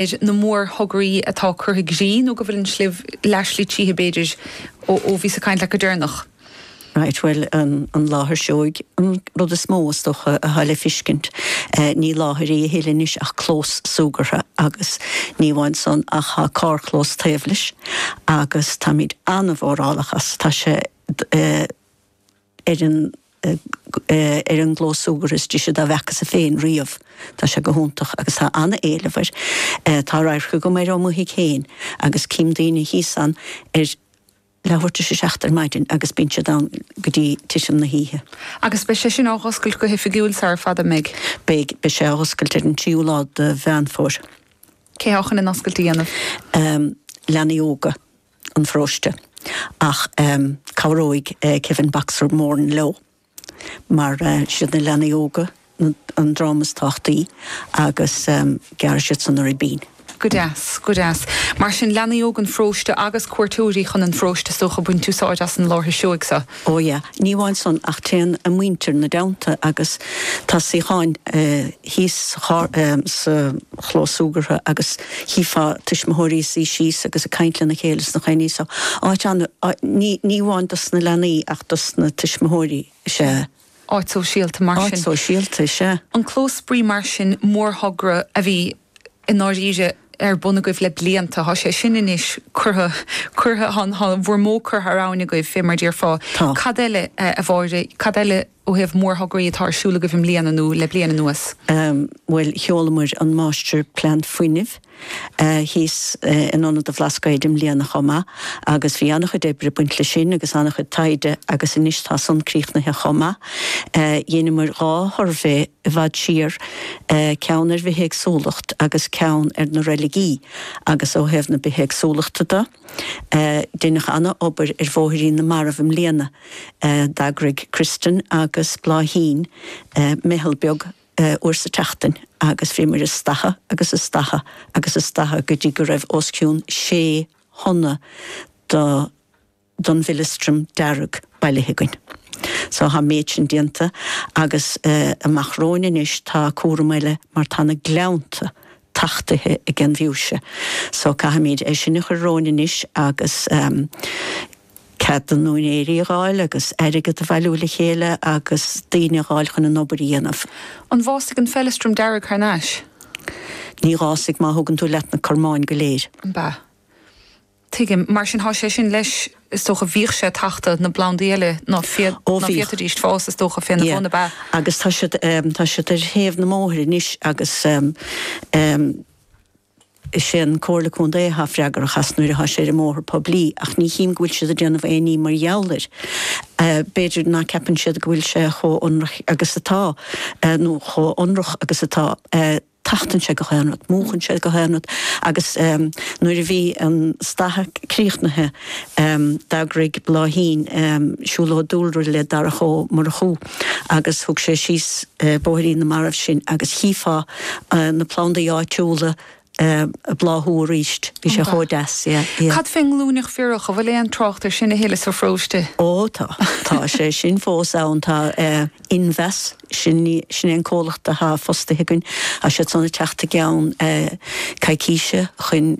ar na mórthograí atá curtha i gcrích nó go bhfuil an tslí leo aistrithe b'fhéidir ó bhíos ag caint leat go deireanach. Right, bhuel an láthair seoigh an rud is mó is dócha atá le fiscint. Ní láthair í a thuilleadh anois ach clós súgartha agus ní amháin san ach tá carrchlós taobh leis agus táimid an-mhórálach as. Tá sé ar an. ar an gclós súgartha is dise dá bhfeacasa féin riamh. Tá sé go hiontach agus tá an-éileamh air. Tá radharc agam air ó mo thigh féin agus cím daoine thíos ann ar leathuair tar éis a seacht ar maidin agus bíonn siad ann go dtí tuitim na hoíche. Agus beidh sé sin á dh'oscailt go hoifigiúil sara fada, mbeidh? Beidh. Beidh sé á dh'oscailt ar an tríú lá de Mheán Fómhair. Cé atá chun an oscailt a dhéanamh? Leanaí óga. an pharóiste ach cabhróidh Kevin Baxter Moran leo mar is iad na leanaí óga an dream is tábhachtaí agus gearrfaidh siad san an ribín. Go deas, go deas. Mar sin, leanaí óga an pharóiste agus cuairteoirí chun an pharóiste is dócha, ag baint úsáid as an láthair seoigh seo. Ó yeah, ní amháin san ach téann a muintir ina dteannta agus tá suíocháin thíos sa charr, sa chlós súgartha agus chífeá tuismitheoirí suite síos agus ag caint lena chéile sna cúinní so áit an-, ní, ní amháin dos na leanaí ach dos na tuismitheoirí is ea. áit shóisialta mar sin. Áit shóisialta is ea. An clós spraoi mar sin, mórthogra a bhí i ndáiríre ar bun agaibh le blianta. Tá sé sin anois curtha, curtha, tá an, tá bhur mbó curtha thar abhainn agaibh, fé mar a déarfá. Tá. Cad eile, a Mháire, cad eile ó thaobh mórthograí atá ar siúl agaibh i mbliana nó le bliain anuas? Bhuel, sheolamar an Máistirphlean Fuinnimh thíos in Ionad an Bhlascaoid i mbliana chomh maith agus bhí an-chuid oibre ag baint leis sin agus an-chuid taighde agus anois tá san críochnaithe chomh maith. Dheineamar dhá shuirbhé i bhfad siar, ceann ar bhithéagsúlacht agus ceann ar na reiligí agus ó thaobh na bithéagsúlachta de, deineadh an-obair ar Bhóithrín na Marbh i mbliana. D'eagraigh Kristen agus Bláithín meitheal beag uair sa tseachtain agus bhíomair ag stathadh agus ag stathadh agus ag stathadh go dtí go raibh os cionn sé thonna don bhfeileastram dearg bailithe againn. So tá an méid sin déanta agus amach romhainn anois tá cúram eile mar tá na gleannta tachtaithe ag an bhfiúise so caithfimid é sin a chur romhainn anois agus. cead na n-úinéirí a ghabháil agus airgead a bhailiú le chéile agus daoine a dh'fháil chun an obair a dhéanamh. An bhfásfaidh an feileastram dearg thar n-ais? Ní dh'fhásfaidh má thugann tú leat na cormáin go léir. Ambaist. Tuigim. Mar sin thá sé sin leis, is dócha. Bhíodh sé ag tachtadh na bplandaí eile ná féadfaidíst fás is dócha fé na bhun, ab ea? Yeah. Agus tá siad, tá siad ar thaobh na mbóithre anois agus. Is é an Comhairle Contae athá freagrach as nuair athá sé ar an mbóthar poiblí ach ní chím go bhfuil siad ag déanamh aon ní mar gheall air. B'fhéidir ná ceapann siad go bhfuil sé chomh ionrach agus atá nó chomh ionrach agus atá. Tachtann sé gach aon rud. Múchann sé gach aon rud agus nuair a bhí an staitheadh críochnaithe d'eagraigh Bláithín siúlóid dúlra le Darach Ó Murchú. agus thug sé síos Bóithrín na Marbh sinn agus chífeá na plandaí áitiúla ag bláthú arís. Bhí sé chomh deas, yeah. Cad fén nglúineach bhiorach, an bhfuil aon trácht ar sin a thuilleadh sa pharóiste? Ó tá, tá sé sin fós ann, tá Invas, sin, sin é an comhlacht atá fostaithe againn, tá siad san ag teacht i gceann coicíse chun,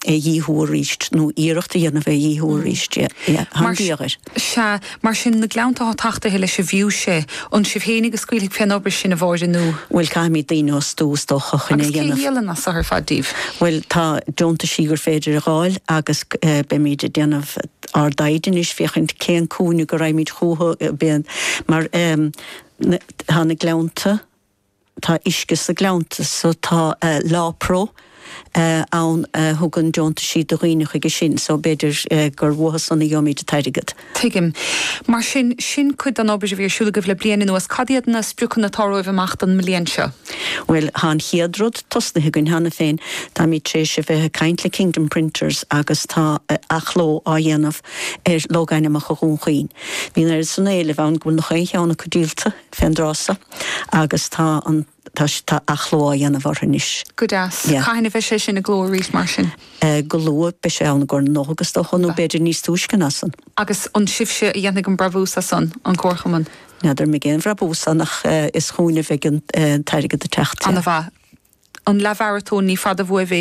a dhíothú arís nó iarracht a dhéanamh é a dhíothú arís. Mar sea, mar sin na gleannta atá tachtaithe leis an bhfiúise, an sibh fhéinig a scaoilfidh fén obair sin a Mháire nó. Bhuel caithfimid daoine a fhostú is dócha chun é a dhéanamh. Agus cé a dhíolann an saothar ar fad díbh? Bhuel tá deontaisí gur féidir a dh'fháil agus beimid ag déanamh ár dtaighde anois féachaint cén cúinne go raighimid chúthu mar tá na gleannta, Tá uisce sna gleannta so tá Lawpro ann a thugann deontaisí do dhaoine chuige sin so b'fhéidir gur uatha san a gheobhaimíd an t-airgead. Tuigim. Mar sin, sin cuid den obair a bhí ar siúl agaibh le bliain anuas. Cad iad na spriocanna atá romhaibh amach don mbliain seo? Bhuel, thá an chéad rud tosnaithe againn cheana féin. Táimíd tar éis a bheith ag caint le Kingdom Printers agus tá athchló á dhéanamh ar Logainmneacha Dhún Chaoin. Bhí an oiread san éilimh ann go bhfuil nach aon cheann acu díolta fén dtráth so agus tá an, tá, tá athchló á dhéanamh orthu anois. Go deas. Yeah. Cathain a bheidh sé sin i gcló arís mar sin. Eh, go luath, beidh sé ann i gcomhair na Nollag is dócha, nó b'fhéidir níos túisce ná san. Agus an sibhse a dhéanfaidh an brabús as san, an Comharchumann? N'fheadar an mbeidh aon bhrabús ann ach eh, is chúinn a bheidh an eh, t-airgead ag teacht, yeah. An-mhaith. An leathmharatón, ní fada bhuaibh é.